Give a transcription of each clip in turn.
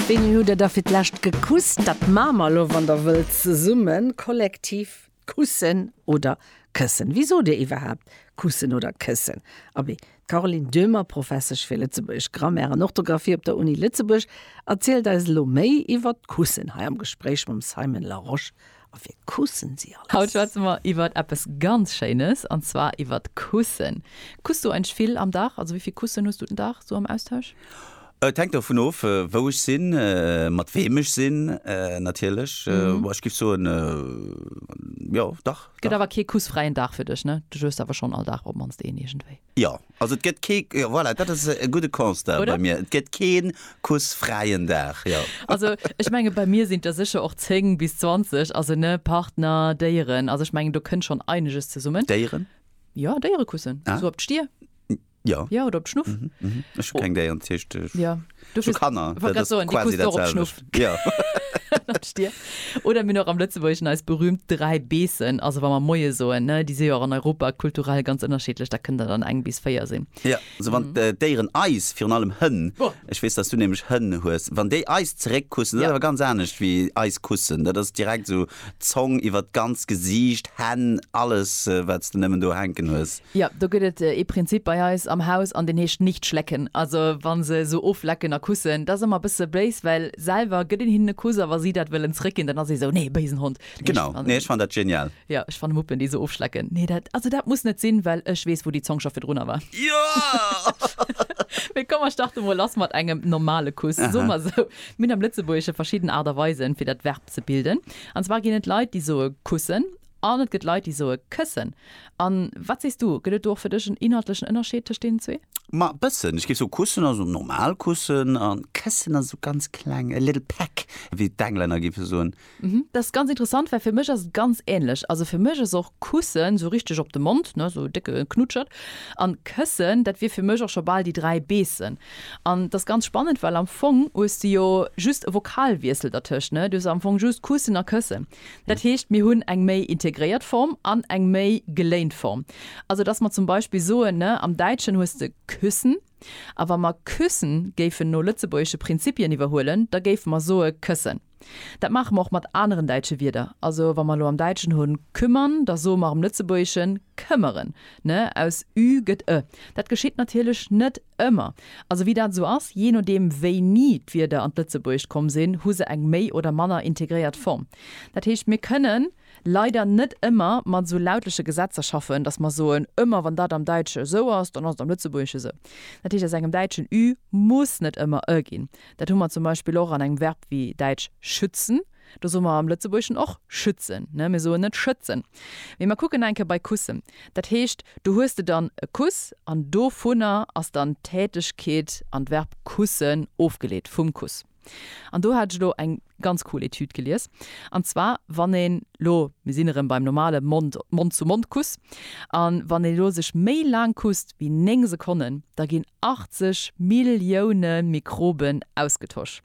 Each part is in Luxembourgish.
Wéini hutt der da fir d'lescht gekusst? Dat maache mer elo, wann der wëllt, zesummen, kollektiv, kussen oder këssen. Wéi sot dir iwwerhaapt kussen oder këssen? Abee, d'Caroline Döhmer, Professesch fir lëtzebuergesch Grammaire an Orthografie op der Uni Lëtzebuerg, erzielt eis elo méi iwwer d'Kussen hei am Gespréich mam Simon Larosche A fir kussen si alles. Haut schwätze mer iwwert eppes ganz Schéines, an zwar iwwert d'Kussen. Kuss du eigentlech vill am Dag? Also wéi vill Kussen hues du den Dag sou am Austausch? Et hänkt dovun of, wou ech sinn, mat weem ech sinn natierlech. Bon, ech géif soen, jo, dach. Et gëtt awer kee kussfräien Dag fir dech, ne? Du hues awer schonn all Dag op d'mannst een iergendwéi. Jo, also et gëtt kee, jo voilà, dat ass e gudde Constat bei mir, et gëtt kee kussfräien Dag, jo. Also ech menge bei mir sinn der sécher och 10 bis 20, also ne, Partner, Déieren, also ech mengen do kënnt schonn eineges zesummen. Déieren? Jo, Déiere kussen, esou op d'Stier. Jo. Jo, oder op d'Schnuff. Ech hu keng Déieren, dat heescht ech. Du zu Kanner oder mir noch am Lëtzeburgschen eis berühmt dräi Beessen also wann man moie soen ne déi si och an Europa kulturell ganz ënnerscheedlech da kënnt der dann eng bis véier sinn. Ja also wann d'Déieren eis virun allem Hënn ech weess dass du nämlech Hënn hues wann déi eis zeréck kussen dat ass awer ganz anescht wéi eis kussen dat ass direkt esou Zong iwwer d'ganzt Gesiicht, Hänn, alles wats de nemmen do hänken hues. Jo, do gëtt et ee Prinzip bei eis am Haus an deen heescht nicht schlecken. Also wa se esou oflecken a kussen, dat ass ëmmer e bësse béis, well selwer gëtt een hinnen e Kuss a wa si dat wëllen zréckginn, dann ass ee esou, nee, béisen Hond. Genau, nee ech fannen dat genial. Jo, ech fanne Muppen déi esou ofschlecken, nee dat, also dat muss net sinn, well ech weess wou déi Zong scho virdrunner war. Mee komm mer starte mol lass mat engem normale Kuss. Soe mer esou, mir hunn am Lëtzebuergesche verschidden Aart a Weisen fir dat Verb. ze bilden. An zwar ginn et Leit, déi soe kussen an et gëtt Leit, déi soe këssen. A wat sees du, gëtt et do och fir dech en inhaltlechen Ënnerscheed tëscht deenen zwee? Ma e bëssen. Ech géif soen, kussen ass esou normal kussen a këssen ass esou ganz kleng, a little peck, wéi d'Englänner géife soen. Mhm, dat ass ganz interessant, well fir mech ass et ganz änlech. Also fir mech ass och kussen esou richteg op de Mond, ne, esou e décke Knutschert. An këssen, dat wier fir mech och scho bal déi dräi beessen. An dass ganz spannend, well am Fong hues de jo just e Vokalwiessel dertëscht, ne? Du hues am Fong just kussen a këssen. Dat heescht, mir hunn eng méi integréiert Form an eng méi geléint Form. Also dass mer zum Beispill soen, ne, am Däitschen hues de küssen, a wa mer küssen géifen no lëtzebuergesche Prinzipien iwwerhuelen, da géife mer soe këssen. Dat maache mer och mat aneren däitsche Wierder. Also wa mer elo am Däitschen hunn kümmern, da soe mer am Lëtzebuergeschen këmmeren, ne? Aus ü gëtt e. Dat geschitt natierlech net ëmmer. Also wéi dat esou ass, jee nodeem wéini d'Wierder an d'Lëtzebuergescht komm sinn, hu se eng méi oder manner integréiert Form. Dat heescht, mir kënnen leider net ëmmer mat esou lautleche Gesetzer schaffen, dass mer soen, ëmmer wann dat am Däitsche esou ass, dann ass et am Lëtzebuergesche esou. Dat heescht, aus engem Däitschen ü muss net ëmmer e ginn. Dat hu mer zum Beispill och an engem Verb wéi däitsch schützen. Do soe mer am Lëtzebuergeschen och schützen. Mir soen net schëtzen. Mee mer kucken nach eng Kéier bei kussen. Dat heescht, do hues de dann e Kuss an dovunner ass dann d'Tätegkeet an d'Verb kussen ofgeleet, vum Kuss. An do hat ech elo eng ganz cool Etüd gelies. An zwar wann een lo, mir sinn erëm beim normale Mond, Mond-zu-Mond-Kuss, an wann een elo sech méi laang kusst wéi 9 Sekonnen, da ginn 80 Millioune Mikroben ausgetosch.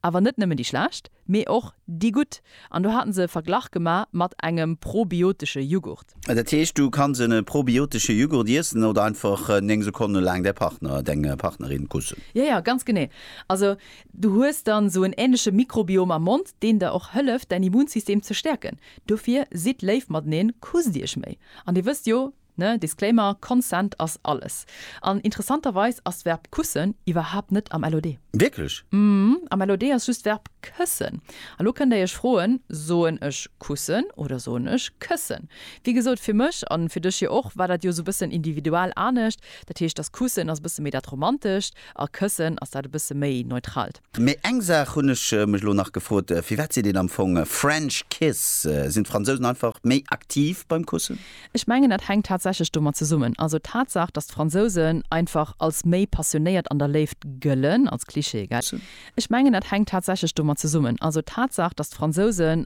Awer net nëmmen déi schlecht, mee och déi gutt. An do haten se e Verglach gemaach mat engem probiotesche Jughurt. Dat heescht, du kanns en probiotesche Jughurt iessen oder einfach 9 Sekonne laang däi Partner, deng Partnerin kussen. Jo, jo, ganz genee. Also Du hues dann sou en ähnleche Mikrobiom am Mond, deen der och hëlleft däin Immunsystem ze stäerken. Dofir sidd léif mateneen, kusst iech méi. An dir wësst jo, ne, Disclaimer, Consent ass alles. An interessanterweis ass d'Verb kussen iwwerhaapt net am LOD. Wierklech? Mhm, am LOD ass just d'Verb këssen. A lo kënnt der iech froen, soen ech kussen oder soen ech këssen? Wéi gesot, fir mech, an fir dech jo och, war dat jo sou bëssen individual anescht. Dat heescht, dass kussen ass bësse méi dat Romantescht, A Këssen ass dat e bësse méi neutralt. Mee eng Saach hunn ech mech elo nach gefrot, Firwat seet een am Fong French kiss? Sinn d'Franzousen einfach méi aktiv beim Kussen? Ech mengen dat hänkt tatsächlech domat zesummen. Also d'Tatsaach, datt d'Fransousen einfach als méi passionéiert an der Léift gëllen, als Cliché, gell? Ech mengen dat hänkt tatsächlech domat zesummen. Also d'Tatsaach, datt d'Fransousen.